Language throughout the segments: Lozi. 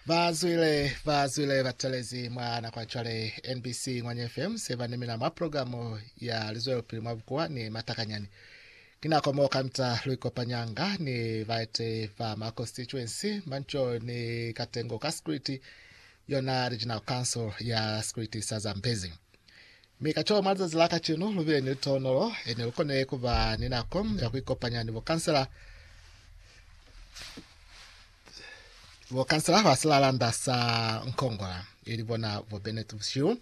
Ba zwile ba zwile ba talezi mwa nako ya cwale NBC Ngwanye FM se ba nemena mwa programu ya lizwelopili mwa bukuwa ni matakanyani. Ki nako mo kamita lu ikopanyanga ni baete ba ma constituency manco ni katengo ka Security yona Regional Council ya Security sa Zambezi. Mi ka co, mwa lizazi la kacenu, lu bile ni litonolo, ene lu kone ku ba ni nako ya ku ikopanya ni bokansela, bokansela ba silalanda sa Nkongola, ili bona bo Bennett bushihu.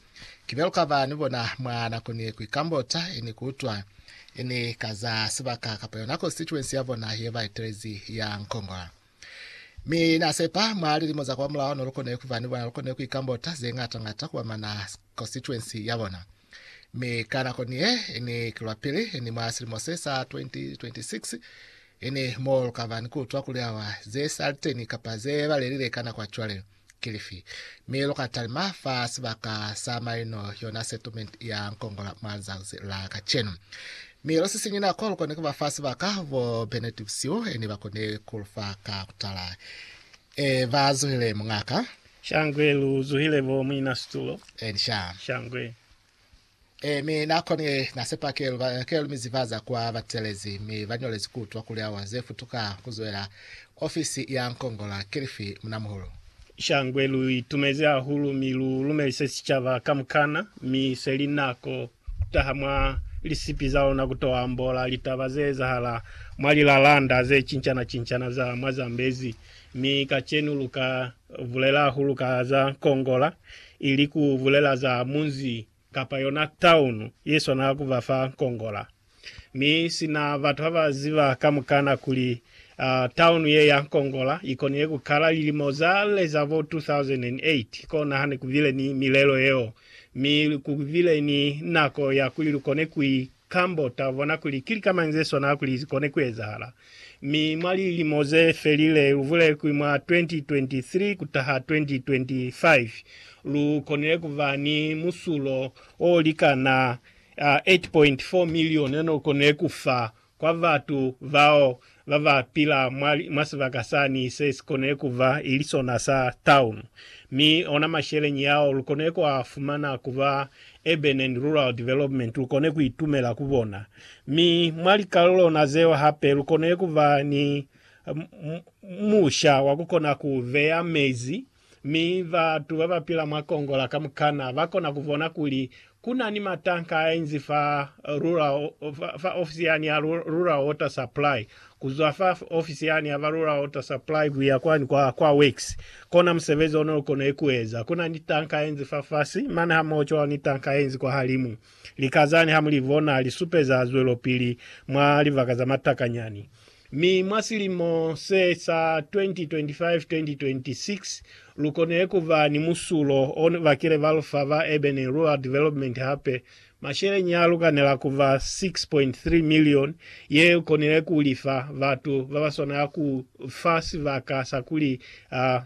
Ki bya lu ka ba ni bona mwa nako ni ye ku ikambota, ene ku utwa, ene ka za sibaka kapa yona constituency ya bona ye ba etelezi ya Nkongola. Mi na sepa mwa lilimo za kwa mulaho no lu kone ku ba ni bona, lu kone ku ikambota ze ngata ngata ku ba mana constituency ya bona. Mi ka nako ni ye, ni ki lwa pili, ni mwa silimo se sa 2026, ni mo lu ka ba ni ku utwa kuli awa ze sa li teni kapa ze balelile ka nako ya cwale ki lifi. Mi lu ka talima fa sibaka sa maino, yona settlement ya Nkongola mwa lizazi la kacenu. Mi lu sisiñi nako, lu koni ku ba fa sibaka bo Bennet Bsiu, ni ba koni ku lu fa ka ku tala. Ee, ba zuhile, muñaka. Shangwe, lu zuhile, bo muina situlo. Eeni, sha. Shangwe. Ee, mi na konile, na sepa ke lu, ke lu mi zibaza kwa batelezi, mi ba ñolezi ku utwa kuli awa ze futuka ku zwela ofisi ya Nkongola ki lifi, munamuhulu. Shangwe, lu itumezi hahulu, mi lu lumelise sicaba kamukana, mi se li nako taha mwa lisipi za lona ku to ambola litaba ze ezahala mwa lilalanda ze cincana-cincana za mwa Zambezi, mi kacenu lu ka bulela hahulu ka za kongola, ili ku bulela za munzi kapa yona taunu ye swanela ku ba fa kongola. Mi sina batu haba ziba kamukana kuli taunu ye ya Nkongola ikonile kukala lilimo za le za bo 2008, kona hane kubile ni milelo yeo, mi kubile ni nako ya kuli lukone kui kambota, bona kuli ki lika mañi ze swana kuli zikone kuezahala. Mi mwa lilimo ze felile, lubulele kuli mwa 2023 kutaha 2025, lu konile kuba ni musulo o likana 8.4 milione no kone ku fa kwa batu bao ba ba pila mwa, mwa sibaka sani se si kone ku ba i li sona sa taunu. Mi ona masheleñi ao lu kone ku a fumana ku ba Urban and Rural Development lu kone ku itumela ku bona. Mi mwa likalulona zeo hape lu kone ku ba ni musha wa ku kona ku beya mezi Mi batu babapila mwa Kongo la kamukana bakona kubona kuli kunani matanka ainzi fa rural, fa ofisi yani ya Rural Water Supply, kuzwa fa ofisi yani ya ba Rural Water Supply kuya kwani kwa, kwa works. Kona musebezi ono ukonile kueza. Kunani tanka ainzi fafasi, mane hamoho cwalo ni tanka ainzi kwahalimu. Lika zani hamulibona lisupeza zwelopili mwa libaka za matakanyani. Mi mwa silimo se sa 2025-2026, lu konile ku ba ni musulo o bakile balufa ba Urban and Rural Development hape. Masheleñi a lukanela ku ba 6.3 milioni ye lu konile ku li fa batu ba ba swanela ku fa sibaka sa kuli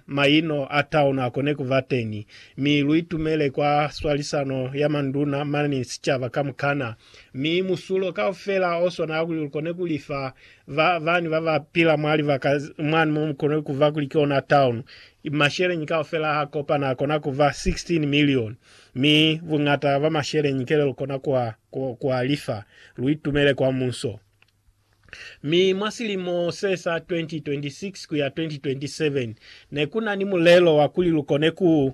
maino a taono a kone ku ba teñi, mi lu itumele kwa swalisano ya manduna mane ni sicaba kamukana. Mi musulo kaufela o swanela kuli lukone ku lifa ba bani ba ba pila mwa libaka mwani mo mu konile kuba kuli ki ona town. Masheleñi kaufela ha kopana a kona kuba 16 milioni. Mi buñata ba masheleñi kele lu kona ku a, ku a lifa, lu itumele kwa muso. Mi mwa silimo se sa 2026 kuya 2027, ne ku na ni mulelo wa kuli lu kone ku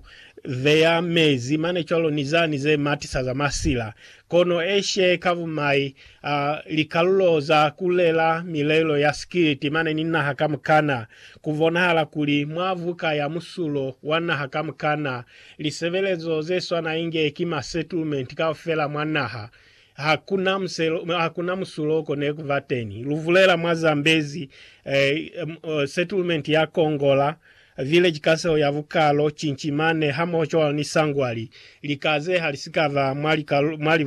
beya mezi mane cwalo ni zani ze matisa za masila, kono eshe ka bumai, a, likalulo za ku lela milelo ya sikiliti mane ni naha kamukana. Ku bonahala kuli mwa buka ya musulo wa naha kamukana, lisebelezo ze swana inge ki ma settlement kaufela mwa naha, Hakuna muselo, hakuna musulo ko ne kuba teni. Luvulela mwa Zambezi, eh, uh, settlement ya Kongola, village kaseho ya Bukalo, Chinchimane, hamoho cwalo ni Sangwali, lika ze halisikaba mwa lika, mwa libu